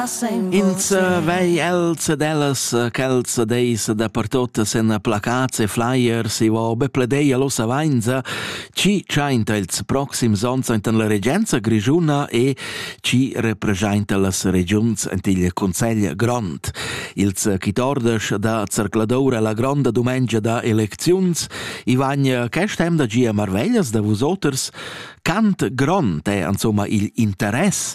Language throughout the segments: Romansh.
Ins vei els ed ellas quels deis da pertot sen placats e flyers, i va be pledeia lossa vainza, chi chainta ils proxims ons enten la regenza grigiuna e chi representa las regiuns ent il Consegl Grond. Ils chitordesch da Zercladoura la gronda dumengia da elecziuns, i van quest'em da gia marveglias da vusoters, Cant grond è insomma il interess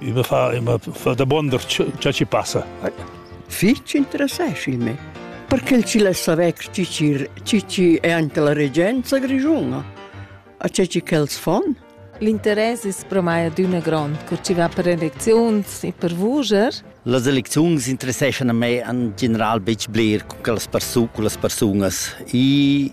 I me fa, i me fa da buonder ciò chi passa. Fich interessant il me. Perché ci lessa vec cicir, cici è anche la regenza grigiuna? A c'è ci quels fon? L'interess es pro mai adüna grond, cur chi va per elecziuns e per vuger. Las elecziuns interesseschan a me an general betg bler con las persun- con las persunas. I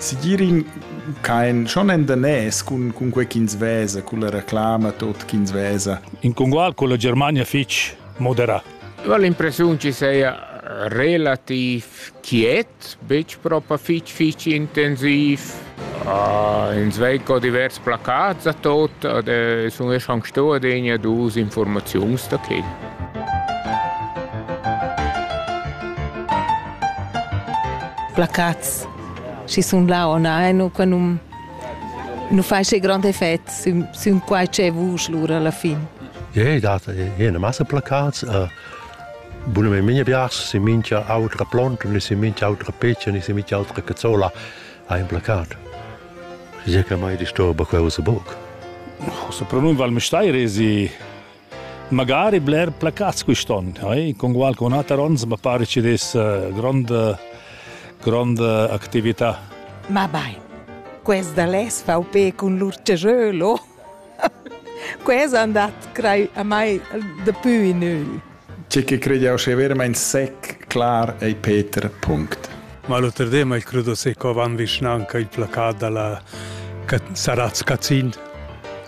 Sigirin kein schon en danès cun cun quei ch'ins vesa, culla reclama tot ch'ins vesa. In congual con la Germania fitg moderà. Ho l'impressiun che seia relativ quiet, betg propa fitg fitg intensiv. Uh, ins vei co divers placats a tot, ad eh, sun esch anc sto adegna dus informaziuns da quel. placats schi sun là on ein u qua nu nu fai che grand effect sün, sün quai che vusch lura alla fin. Ja, yeah, dat jene masse placats. Uh, Bune me minha bias si mincha autra plont, ni si mincha autra peccia, ni si mincha autra cazzola ha in placat. Je che mai disturba quella boc. Se pronun val me stai resi Magari bler placats quist'on, eh? Congual con ater ons mi pare ci des eh, grande grande actività. Ma bai. Questa les VP con l'urcejolo. Questa è andat crei a mai de più in ü. Ci che crede che veramente sec clar e Peter punct. Ma l'oter de mai credo se co van vicinanca il placat dalla Saraz Cazin.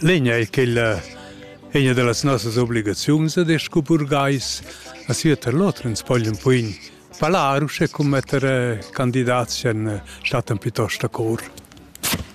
L'egna è quella egna da las nossas obligaziuns ed es scu burgais a sieuter l'oter ins poglia ün poin palar uschè cum metter eh, candidats ch'han eh, stat ün piuttost a cor.